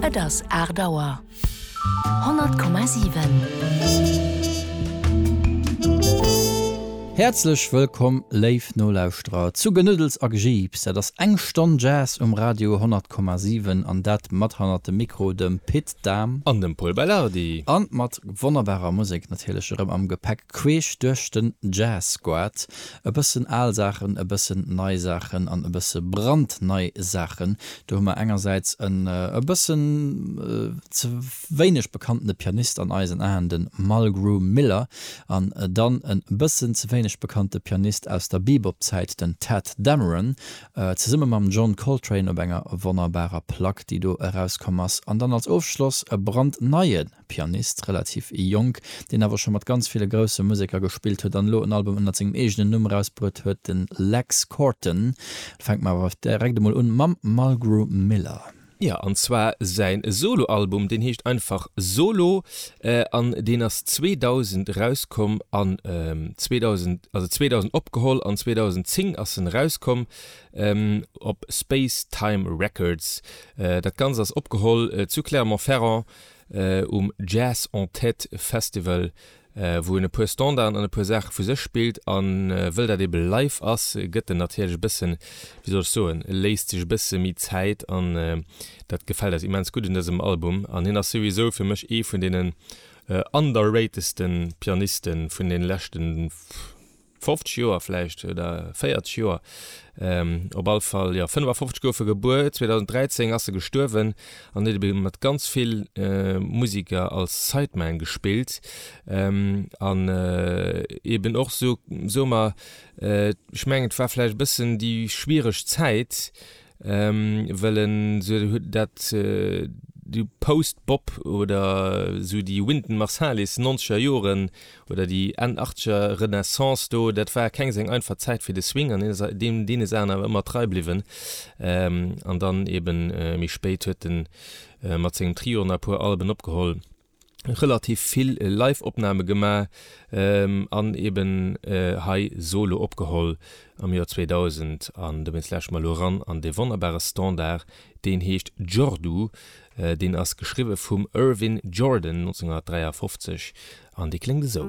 Et ass 8 Auer. 100,7. Häerzlech wëllkomm, léif Nolauschterer, zu Genuddels a Gejiips. Dat ass eng Stonn Jazz um Radio 100,7, an dat mat hannert dem Mikro dem Pit Dahm. An dem Pol Beilhardi. A mat wonnerbarer Musek natierlech erëm am Gepäck, queesch duerch den Jazz-Squad. E bëssen al Saachen, e bëssen nei Saachen an e bësse brandnei Saachen. Do hu mer engersäits en e bëssen ze wéineg bekanntene Pianist an eisen Aen, de Mulgrew Miller, an dann e bëssen ze wéineg bekannte Pianist aus der Bebop-Zäit, den Tadd Dameron, zesumme mam John Coltrane op enger wonnerbarer Plack, déi do erauskomm ass. An dann als Ofschloss e brandneie Pianist, relativ jonk, deen awer scho mat ganz ville grousse Museker gespillt huet an elo en Album ënnert sengem eegenen Numm erausbruet huet, de Lex Corton. Fänke mer awer direkt emol un mam Mulgrew Miller. Jo, an zwar säin Solo-Album, deen heescht einfach Solo an deen ass 2000 erauskomm an 2000, also 2000 opgeholl an 2010 ass en erauskomm op Space Time Records. Dat Ganzt ass opgeholl zu Clermont-Ferrand. um Jazz en Tête Festival, wou en e puer Standarden an e puer Saache vu sech spillt. A wëll dat ebe live ass, gëtt en natierlech e bëssen, wéi soll ech soen, léisst sech e bësse méi Zäit. An dat gefält eis immens gutt un dësem Album. An hien ass souwisou fir mech ee vun deenen underratedste Pianiste vun de leschte. 50 Joer vläicht, oder 40 Joer, op all Fall, jo, 55 gouf e gebuer, 2013 ass e gestuerwen, an huet ebe mat ganz vill Musiker als Sideman gespillt, an eben och sou, soe mer, ech mengen et war vläicht e bëssen déi schwiereg Zäit, Well en sou huet dat déi Post-Bop oder sou déi Wynton Marsalis nonzeger Joren oder déi Enn Achtzeger Renaissance do, dat war keng seng einfach Zäit fir de Swing an hien ass deem deene Saachen awer ëmmer trei bliwwen. An dann eeben méi spéit huet en mat sengem Trio nach e puer Alben opgeholl. relativ vill Live-Opname gemaach an eben hei Solo opgeholl am Joer 2000. An dowéinst lauschteren mer elo eran an dee wonnerbare Standard, deen heescht Jordu. Deen ass geschriwwe vum Irvin Jordan 1953 an dee kléngt esou.